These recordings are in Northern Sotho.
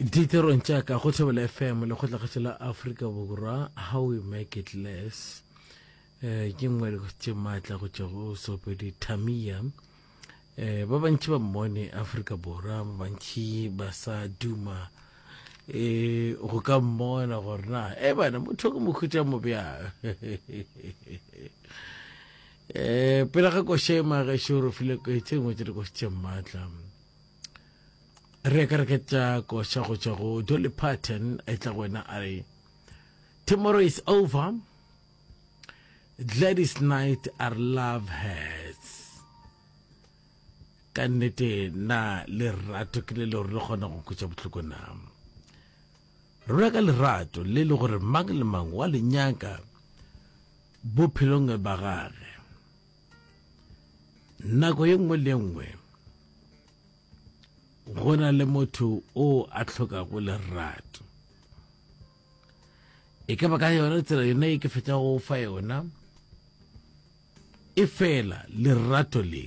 diterong tša ka go thobela fm le kgotlagetšo la afrika borwa how we make it less eh, ke nngwe tše maatla go tšwa go sopedi tamia eh, ba bantši ba mmone afrika borwa ba bantši ba sa duma eh, go ka mmona gore na e bana motho ke mokhutša mobjang eh, pele ga košema ge šoro file tše ngwe tše di košitše maatla re ka re ke tša koša go tšwa go dolly parton e tla go wena a re tomorrow is over gladys night are love hats ka nnete na lerato ke le leo re kgona go kutša bohloko na rona ka lerato le le gore mang le mang wa le nyaka bophelong ba gage Nako ye nngwe le nngwe go na le motho o a tlhokago lerato e ka ba ka yona tsela yona e ke fetsa go fa yona e fela lerato le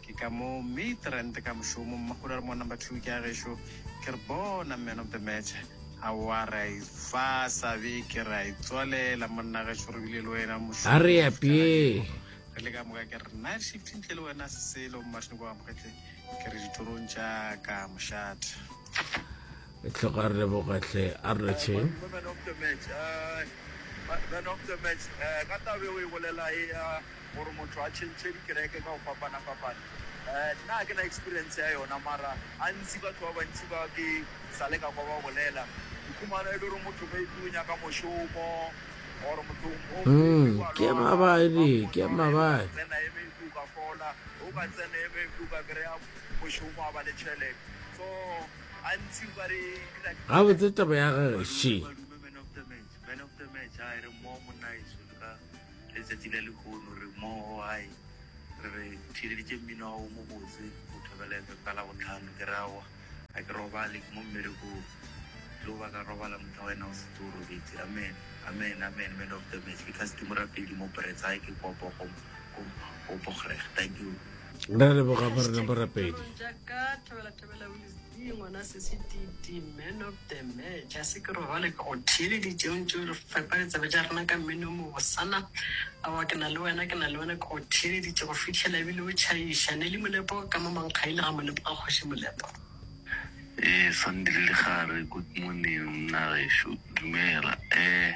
Ke ka moo Midrand ka mošomo, Mmakgolo a re, Monna number two ke a gešo. Ke re, Bona man of the match, aowa re a e fa sabe, ke re a e tswalela monna gešo, re bile le wena mošomo A re apee. Re le ka moka ke re, Night shift ntle le wena se selo, Mmathinoko Amogetle, ke re ditorong tša ka mošate. Tlhoga re leboga hle a re retšheng. Man of the match. Man of the match. Ka tabe o e bolela e ya gore motho a tšhentšhe dikereke ka go fapana-fapana. Nna ke na experience ya yona mara a ntsi batho ba bantši ba ke sa le ka kwa ba bolela. Dikhumana e le gore motho maybe o nyaka mošomo or motho o ke mabadi ke mabadi tsena e maybe o ka fola o ka tsena e maybe o ka kry-a mošomo a ba le tšhelete so gabotse taba ya gage she letsatsi la lekgono re mmogo gae re re theleditše mmino wa o mobotse go thobela efepa la botlhano ke rawa ga ke robale ke mo mmerekong tlo ba ka robala motho wa wena o setse o robetse amen amen amen man of the match because ke morapedi mo brets gae ke kopo go go bogereg thank you re leboga borena borapedi Thobela o itse ngwana sesi titi man of the match a se ke robale ke go theeleditše o ntše o re fepa ditsebe tša rena ka mmino o mobosana awa ke na le wena ke na le wena ke go theeleditše go fihlela ebile o tšhaiša ne le molepo ka mo mankgaile ga molepo ga kgoši molepo Eh, Sandile Lekgare, good morning mna gešo, dumela. Eh,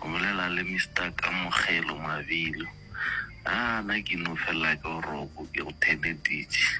o bolela le Mister Kamogelo Mabilo. Ah, na ke no fela ke boroko, ke go theleditše.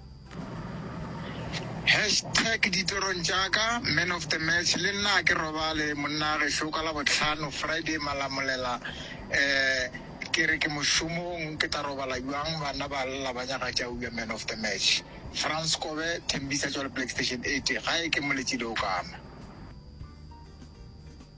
Hashtag Ditorong tša ka, Man of the Match, Le nna a ke robale monna gešo ka Labohlano, Friday, malamolela eh Ke re ke mošomong ke tla robala bjang bana ba lla ba nyaka tša uya Man of the Match, Frans Kobe, Thembisa Tšwale Black Station 80, Gae ke moletši le okama.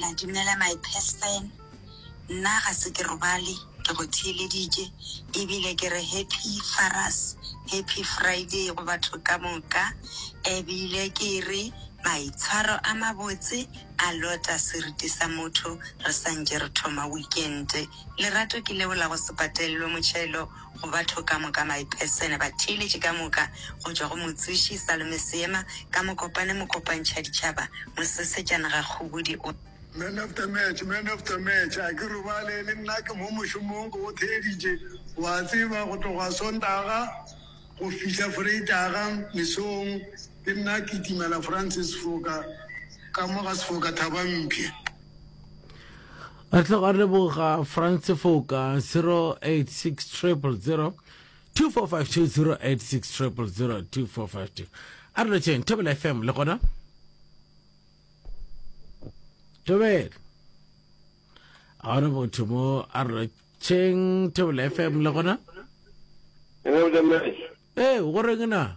La dumela my person nna ga se ke robale ke go theeleditše e bile ke re happy faras happy Friday go batho ka moka e bile ke re maitshwaro a mabotse a lota seriti sa motho re santše re thoma weekend lerato ke leo la go se patelelwe motšhelo go batho ka moka, maipesene, batheeletši ka moka, go tšwa go motsoši, salome, seema, ka mokopane, mokopantšhaditšhaba, mosesetšana, gakgobodi, o. Man of the match, man of the match, a ke robale, le nna ke mo mošomong, ke go theeditše, o a tseba, go tloga Sontaga go fihla Freitaga mesong, ke nna a kitimela Francis Sefoka ka mo ga Sefoka Thabampshe. Re tloga re leboga Franz Foka 086000 2452 086000 2452 a re letšeng thobela fm le gona tobela a re botho mo a re letšeng thobela fm le gona ee go reng na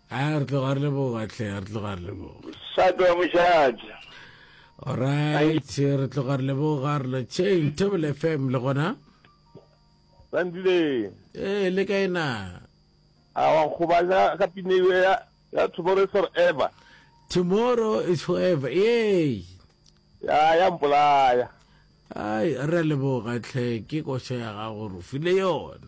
A re tloga re leboga hle, re tloga re leboga. Sato ya mošate. Alright, re tloga re leboga re lo chain Table FM le gona. Sandile. Eh, le kae na? A wa nkgobanya ka pine eo ya ya Tomorrow is Forever. Tomorrow is forever. Yey. Ya ya mpolaya. Ai, re a leboga hle, ke koša ya gago re o file yona.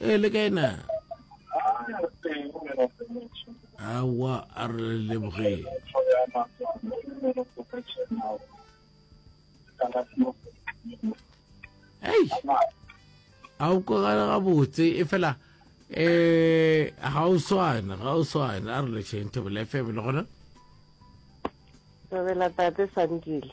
e le kae na awa a re lebogeng ei a o kogale gabotse e fela um ga o swane ga o swane a re lešeng thobela fm le gona thobela tate sandile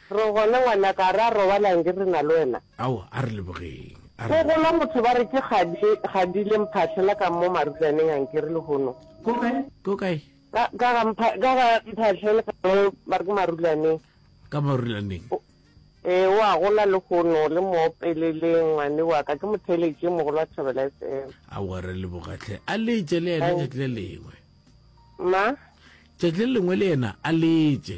Re gona ngwanaka, a re a robalang ke rena le wena? Aowa, a re lebogeng, a Go re. gola motho ba re ke kgadi, kgadi le mphahle la ka mo marulaneng a nkere lehono. Ko kae? Ko kae? Ka, ka ga mpha, ka ga mphahle le ka mo ba re ke marulaneng. Ka marulaneng. O, ee, o a gola lehono, le mo opeleleng ngwane wa ka, ke mo theeletše mogolo wa Thobela FM. Aowa, re leboga hle, a letše le yena tšatši le lengwe. Ma? Tšatši le lengwe le yena a letše.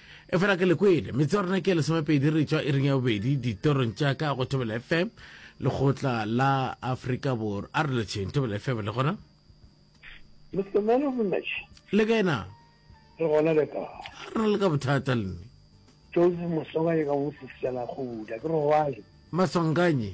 Efela ke le kwele, metse wa rena ke ya lesomepedi re tšwa iring ya bobedi ditorong tša ka go Thobela FM, lekgotla la Afrika Borwa. A re letšheng, Thobela FM le gona? Mr. Man of the Match. Le kae na? Re gona le ka. A re le ka bothata le nne. Joseph Mosonganye ka go Mosisela Khuda, ke re go ae? Masonganye.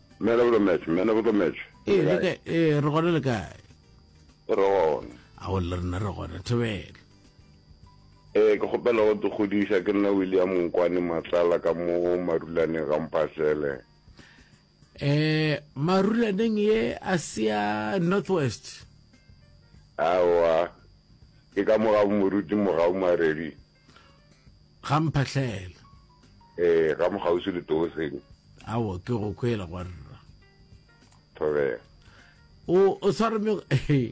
Man of the match, man of the match. Ee, le kae? Ee, re gona le kae? Re gona. A go le rena re gona, Thobela. Ee, ke kgopela go tokgodiša ke nna William Nkwane Matlala ka mo marulaneng ga mphatlele. Eh, marulaneng ye a sia Northwest. Awa. Ke ka mo ga moruti mogau maredi. ga mphahlele ee ga mokgausi le tooseng awo ke go kwela gwa rra thobela o o tshware me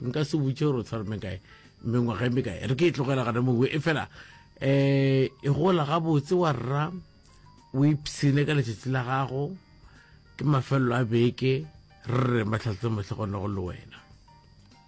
nka se butše gore o tshware me kae mengwaga e me kae re ke e tlogela gana mowe e fela um e gola gabotse wa rra o ipsene ka letšatši la gago ke mafelelo a beke re re matlhatse motlhe gona go le wena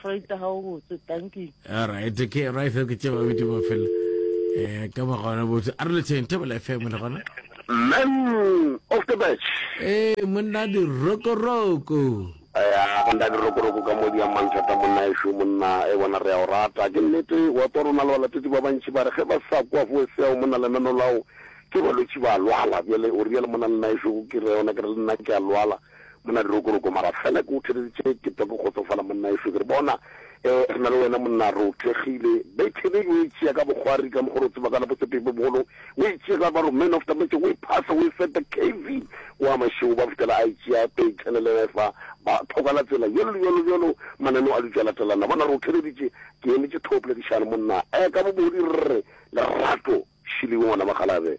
Traita ga o botse, thank you. All right, ke right ke tše ba bitse ba fela. Eh ka ba gona botse. A re le tšeng tebela FM le gona. Man of the match. Eh monna di roko roko. Ya go nda di roko roko ka modi ya manthata monna e shu monna e bona re ya o rata. Ke nnete wa tswa rona le balatedi ba bantši ba re ge ba sa kwa fo se ya monna lenano lao ke balwetši ba lwala. Bjale o real monna nna e shu ke re yona ke re le nna ke a lwala. Monna Dirokoroko, Mara fela ke go theleditše ke twa ke kgotsofala monnaešo, ke re bona eh re na le wena monna re o thekgile. Bethebedi o e tšea ka bokgwari ka mokgwa re o tseba ka la Botshepehi bo Bogolo, o e tšea ka baro man of the match, o e phasa o e feta KV wa Mašego ba fetela a e tšea e tšhelelela efa ba thoka la tsela bjalo le bjalo bjalo mananeo a dutša latelana. Bona re o theleditše ke emetše thopla ke šale monna eh ka bobodi rre Lerato Šiliwe ngwana Makgalabe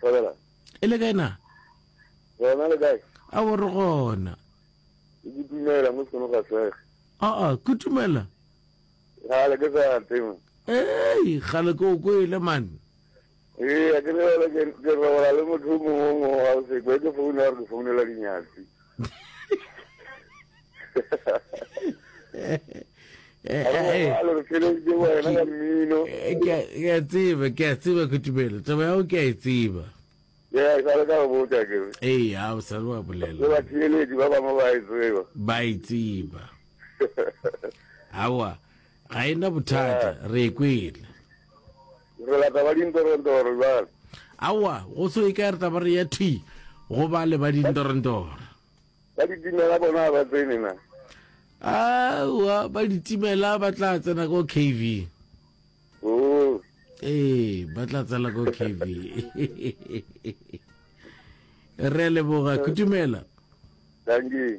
Thobela. E le kae na? Gona le kae? A bo re gona. E ke tumela mo seno ga sege. A a ke tumela. Ga le ke sa tema. Ei, ga le ke o kwele man. Ee, a ke le ke robala le motho mongwe wa o se kwe ke founa re ke founela dinyatsi. ke a tseba ke a tseba ke tumelo taba yago ke a e tseba ee a o sale wa bolela ba e tseba awa Ga e na bothata, re e kwele. Re lata ba dintorentoro jwale. Aowa, go so e ka re taba re ya thwi go ba le ba dintorentoro. Ba ditimela bona ga ba tsene na? Aowa, ba ditimela ba tla tsena ko KV. Oo. Ee, ba tla tsena ko KV. Re a leboga, kutumela. Dankie.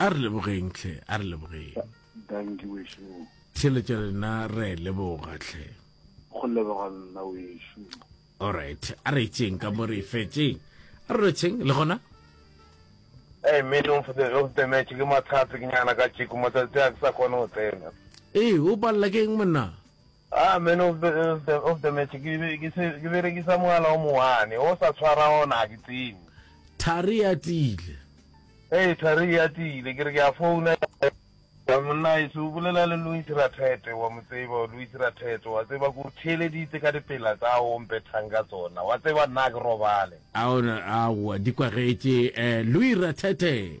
A re lebogeng tlhe, a re lebogeng. Danki wešo. Theeletša le nna re leboga tlhe. Go leboga nna wešo. Alright, a re tšeng ka mo re fetšeng. A re rwetšheng le gona. Ee, meeting for the of the match ke mathatsi ke nyana ka tšeko matsatsi a ke sa kgone go tsena. Ee, o palela ke eng monna? A man of the of the of the match ke be ke se ke berekisa mogala o mowane o sa tshwara ona ga ke tsebe. Thari e atile. Hey Thari e atile ke re ke a founa ya monnaeso o bolela le Louis Rathete wa mo tseba Louis Rathete wa tseba ke o theeleditse ka dipela tsa o mpethang ka tsona wa tseba nna a ke robale. Aowa di kwagetše eh Louis Rathete.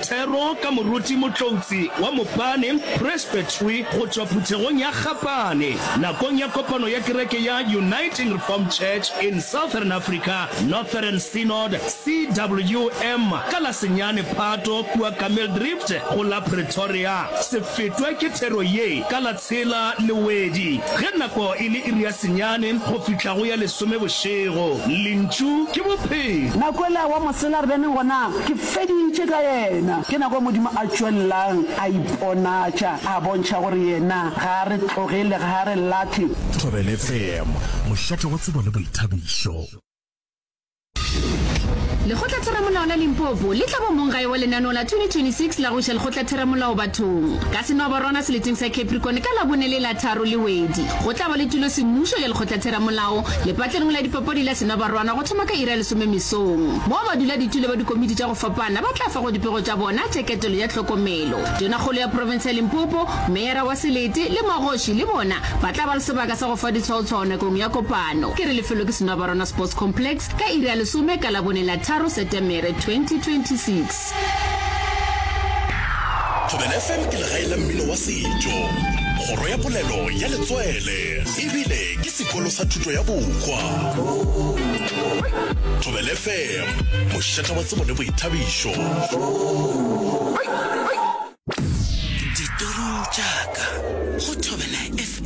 Thero ka moruti Motloutsi wa Mopane Presbytery go tšwa phuthegong ya Gapane nakong ya kopano ya kereke ya Uniting Reformed Church in Southern Africa, Northern Synod, CWM, ka la senyane Phato kua Kameeldrift go la Pretoria. Se fetwe ke thero ye ka la tshela Lewedi ge nako e le iri ya senyane go fihla go ya lesome bošego. Lentšu ke Bophelo. Na kwele wa mosela re bene gona? Ke. feditše ka yena. Ke nako Modimo a tšwelelang a iponatša, a bontšha gore yena ga a re tloge le ga a re lahle. Thobele FM, mošate wa tsebo le boithabišo. Lekgotlatheramolao la Limpopo le tla ba mong gae wa lenaneo la 2026 la go iša lekgotlatheramolao bathong ka Senoabarwana seleteng sa Capricorn ka Labone le Latharo le Wedi. Go tla ba le tulosemmušo ya lekgotlatheramolao lepatlelong la dipapadi la Senoabarwana go thoma ka iri ya lesome mesong. Mo baduladitula ba dikomiti tša go fapana ba tla fa go dipego tša bona tša ketelo ya tlhokomelo. Tonakgolo ya profense ya Limpopo, meyara wa selete le magoši le bona ba tla ba le sebaka sa go fa ditshwaotshwao nakong ya kopano, ke re lefelo ke Senoabarona Sports Complex, ka iri ya lesome ka Labone la tharo Setemere 2026. Thobela FM ke legae la mmino wa setšo, kgoro ya polelo ya letswele ebile ke sekolo sa thuto ya bokgwa. Thobela FM, mošata wa tsebo le boithabišo. Ditorong tša ka go Thobela FM.